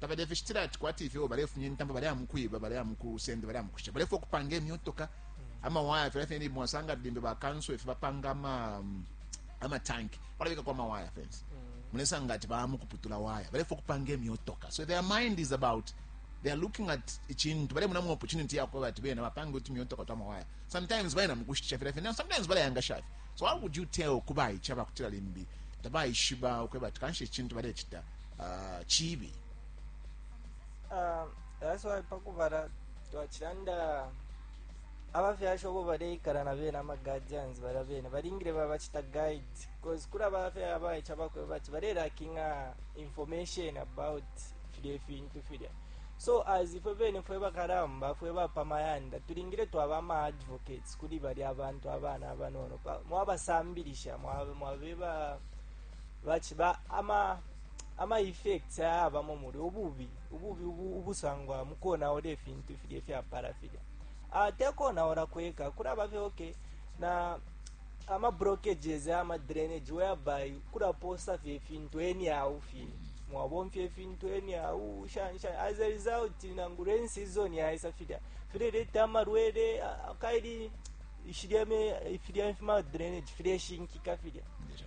tabalefishitila ati kwati ifyo balefumya intambo baleya mu kwiba baleya mu kusenda baleya mu kusha balefwa ukupanga imyotoka amawaya filya fine mwasanga limbe bakanso ifi bapanga ama mm, amatanki balabikako amawaya fence mulesanga ati baya mu kuputula waya balefwa ukupanga imyotoka so their mind is about they are looking at icintu balemona mu opportunity yakwe bati bena bapange uti imyotoka twa mawaya sometimes bayena mu kushitisha filya fine sometimes balayangasha fye so how would you tell kubayica bakutila limbi tabayishiba ukweba ati kanshi icintu balecita ah, cibi Ah, that's why pakubala twachilanda abafyashi obo baleikala na bene ama guardians bala bene balingile babachita guide cause kula bafya abaicha bakwe bati balelakinga information about filya ifintu filya so as ifwe bene fwe bakalamba fwe bapamayanda tulingile twaba ama advocates kuli bali abantu abana abanono pa- mwabasambilisha mwabe- mwabeba baciba ama ama effects ayabamo muli ububi ububi ubu, ubusangwa mu konaula ifintu ifilya ifyapala filya uh, te konaula kweka kulaba fye okay na ama blockages ama drainage whereby kulaposa fye ifintu anyhow fye mwabomfya ifintu anyhow shansha as a result nangu rain season yaisa filya fileleta amalwele ah, kaili shilya me- filya fima drainage fileshinkika filya Ndio.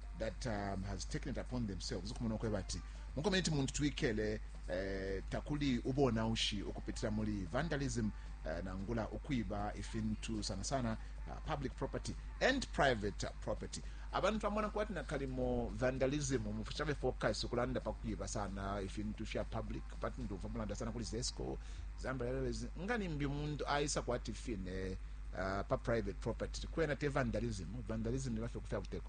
that um, has taken it upon themselves ukumona ukweba ati mu community muntu twikele eh, takuli ubonaushi ukupitira muri vandalism eh, nangula ukwiba ifintu sana sana uh, public property and private uh, property abantu twamona kwati nakalimo vandalism mufu chave focus ukulanda pakwiba sana ifintu fya public but ndumva mulanda sana kuli zesco zamba airways ngani mbi muntu aisa kwati fine uh, pa private property kwena te vandalism vandalism ni vafe kufya kuteko